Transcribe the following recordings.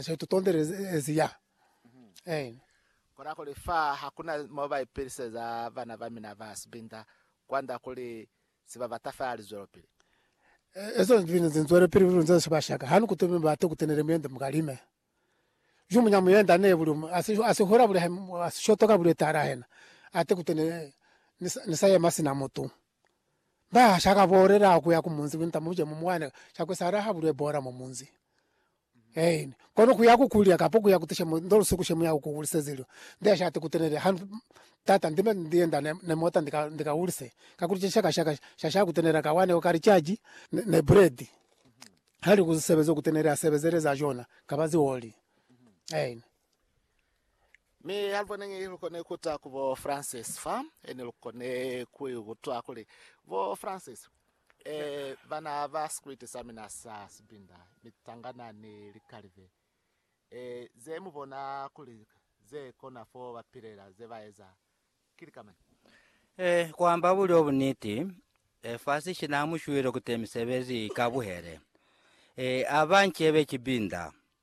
Seo to tondele ze ezi ya. Amen. Kona kuli fa hakuna mo ba ipiliseza bana ba mina ba sibinda kwanda kuli si ba bata fela lizwelopili. Ezo zibinda ze nzwele pili luli nze siba shaka hanu kuto mi bate kutenele muyende mukalime. Ju munya muyenda ne buli umu asi a si hula buli a si shotoka buli etahala hena ate kutenele ni sa yema sina mutu. Ba sha ka bolela kuya ku munzi winta muje mu mwane sha ku sala ha bulwe bola mwa munzi. Ein. Kono kuya ku kulya kapo kuya ku tishe mu ndo lusuku she muya ku ulise zilo. Ndi ya shati ku tenele ha Tata ndi me ndi yenda ne ne mota ndi ka ndi ka ulise. Ka kuli cishaka shaka sha sha ku tenela ka wane o kali caji ne ne bredi. Hali ku sebeza ku tenele a sebezele za jona ka ba zi oli. Ein. Mi aluboneni lukone kuta ku bo Francis fa, ene lukone kuikutwa kuli, Bo Francis, eh, bana ba sikwiti sa mina sa sibinda, mitangana ni likalive, eh, ze mubona kuli ze kona fo ba pilela, ze ba eza, ki lika mañi? Eh, kuamba bulyo buniti, eh, fa si shina mushwile kute misebezi ikabuhele, eh, aba ncebe kibinda.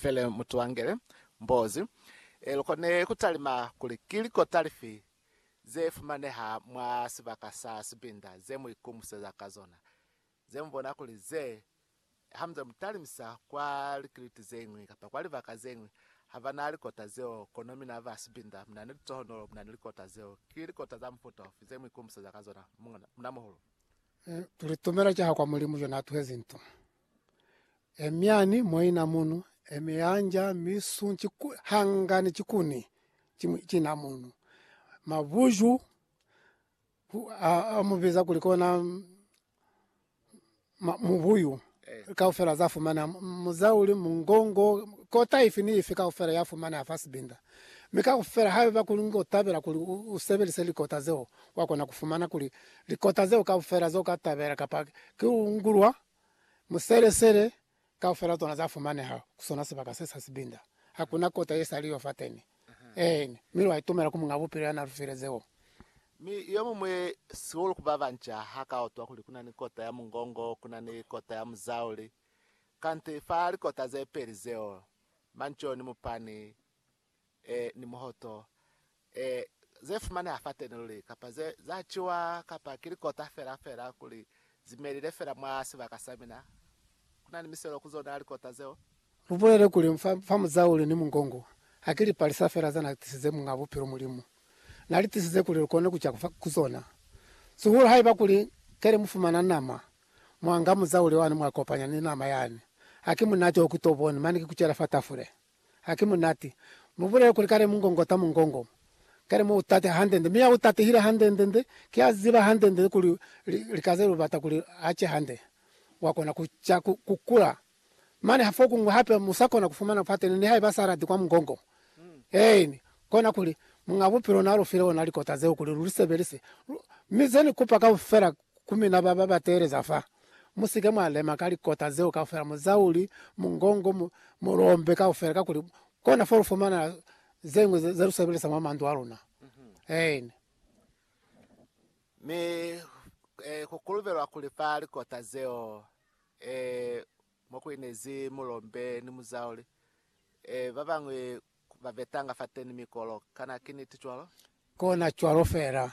Fele mutuangele mbozi e lukone kutalima kuli ki likota lifi ze fumaneha mwa sibaka sa sibinda ze mu ikumuseza ka zona, ze mu bona kuli ze ha muze mu talimisa kwa likiliti ze ñwi kapa kwa libaka ze ñwi ha ba na likota zeo, kono mina ba sibinda mu na ni litohonolo mu na ni likota zeo. Ki likota za mufuta ufi ze mu ikumuseza ka zona, muñamuhulu? Tulitumela ki ha kwa Mulimu yo n'a tuhezi nto? Emiani moina munu, emianja misu ciku, hangani cikuni cimwi cina munu. Mabuju hu- a- amubiza kuli kona mm, ma- mubuyu kaufela za fumana muzauli mungongo kota ifi ni ifi kaufela ya fumana ya fa sibinda mi kaufela haiba kuli ngo tabela kuli u- usebelise likota zeo wakona kufumana kuli likota zeo kaufela zo ka tabela kapa ki ungulwa Muselesele kaufela tsona za fumaneha ku sona sibaka se sa sibinda. Ha ku na kota ye sa liwa fateni. Eeni, mi lwa itumela ku Muñ'a Bupilo ya na lu file zeo. Mi yo muñwi, sihulu ku ba banca, ha ka utwa kuli ku na ni kota ya mungongo, ku na ni kota ya muzauli. Kanti fa likota ze peli zeo, manco ni mupani, e, ni muhoto, e, ze fumaneha fateni luli, kapa ze, za ciwa, kapa ki likota fela, fela kuli zi melile fela mwa sibaka sa mina. Kuna ni miselo ku zona likota zeo. Lu bulele kuli, fa, fa muzauli ni mungongo, ha ki lipalisa fela za Na tisize Muñ'a Bupilo, Mulimu. Na li tisize kuli lu kone ku ca ku zona. Sihulu haiba kuli keli mu fumana nama, mwa nga muzauli wani mwa kopanya ni nama yani, ha ki munate o ki to boni, mane ki ku cela fa tafule. Haki munati. Mubulele kuli kale mungongota mungongo. Kale mu utate hande-nde. Mi ya utatehile hande-nde-nde, ki a ziba hande-nde-nde kuli lika ze lu bata kuli a ce hande, wa kona ku ca, ku, ku kula. Mane ha fokuñwi hape mu sa kona ku fumana pateni, nihaiba sa lati kwa mungongo. Eeni. Kona kuli, Muñ'a Bupilo n'a lu file ona likota zeo kuli lu li sebelise. Lu, mi ze ni kupa kaufela Ku mina ba ba ba teeleza fa, mu si ke mwa lema ka likota zeo kaufela, muzauli, mungongo, mu, mu lombe kaufela, kakuli kona fo lu fumana ze ñwi ze, ze lu sebelisa mwa mandu a luna. Eeni. Mi, e, ku kolobelwa kuli fa likota zeo, e, mo ku inezi mulombe ni muzauli, e, ba bañwi ba vetanga fateni mikolo. Kana ki niti cwalo? Kona cwalo fela.